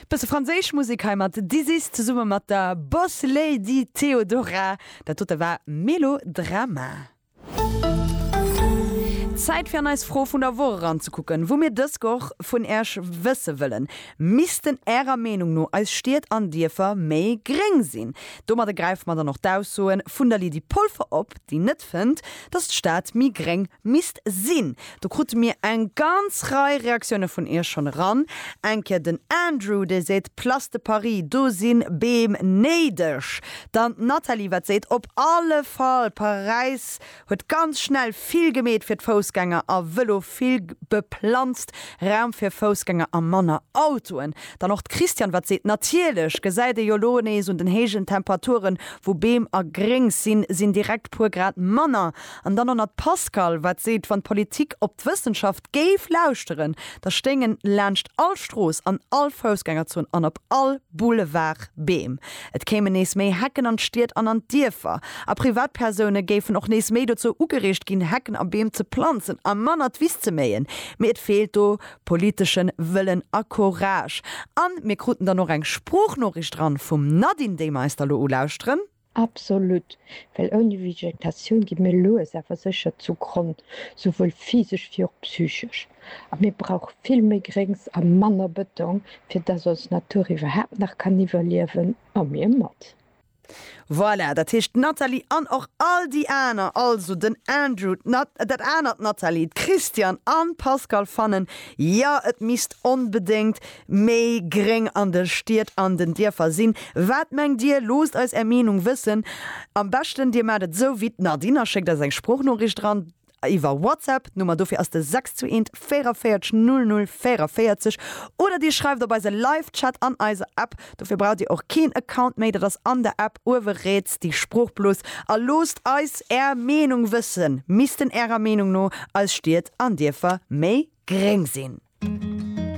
Bësse franséisch Musek hei mat Dizzy's zesumme mat der Bosslady Theodora. Dat dote war Melodrama. Zäit fir an eis Fro vun der Woch eranzekucken, wou mir dës Goch vun Äerch wësse wëllen, Missten Ärer Meenung no eis Stied an Dierfer méi gréng sinn? Domadde gräife mer dann och d'Aussoe vun der Lydie Polfer op, déi net fënnt, datt d'Stad méi gréng misst sinn. Do krute mir eng ganz Rei Reaktioune vun iech schonn eran. Eng Kéier den Andrew, dee seet, Place de Paris, do si Beem néideg. Dann d'Nathalie, wat seet, Op alle Fall, Paräis huet ganz schnell vill gemeet fir d'Foussgänger a Vëlo, vill beplanzt Raum fir Foussgänger a manner Autoen. Dann och d'Christiane, wat seet, Natierlech, gesäit ee jo elo nees un den héijen Temperaturen, wou Beem a Gréngs sinn, sinn direkt puer Grad manner. An dann och nach d'Pascale, wat seet, wann d'Politik op d'Wëssenschaft géif lauschteren, da stéingen laanscht all Strooss, an all Foussgängerzon an op all Boulevard Beem. Et kéimen nees méi Hecken an d'Stied an an d'Dierfer. A Privatpersoune géifen och nees méi dozou ugereegt ginn, Hecken a Beem ze planzen a manner d'Wiss ze méien. Mee et feelt do politesche Wëllen a Courage. A mir kruten dann och eng Sproochnoriicht eran vum Nadine, déi mer eis da lo ulauschteren. Absolut, well ouni Vegetatioun gi mir lues awer sécher zu Gronn, souwuel physesch wéi och psychesch. A mir brauche vill méi Gréngs a manner Bëtong, fir dass ons Natur iwwerhaapt nach kann iwwerliewen, a mir mat. Voilà, dat heescht, d'Nathalie an och all déi aner, also den Andrew, d'Nat, dat anert Nathalie, d'Christiane an d'Pascale fannen, jo, et misst onbedéngt méi gréng an de Stied an den Dierfer sinn. Wat mengt dir? Loosst eis är Meenung wëssen. Am beschten dir maacht et esou wéi d'Nadine a schéckt eis eng Sproochnoriicht eran iwwer Whatsapp. D'Nummer dofir ass de 621 44 00 44 oder dir schreift op eise Live-Chat an eiser App. Dofir braucht dir och keen Account méi, dat ass an der App uewe riets déi Sproochblos. A loosst eis är Meenung wëssen. Missten ärer Meenung no eis Stied an Dierfer méi gréng sinn?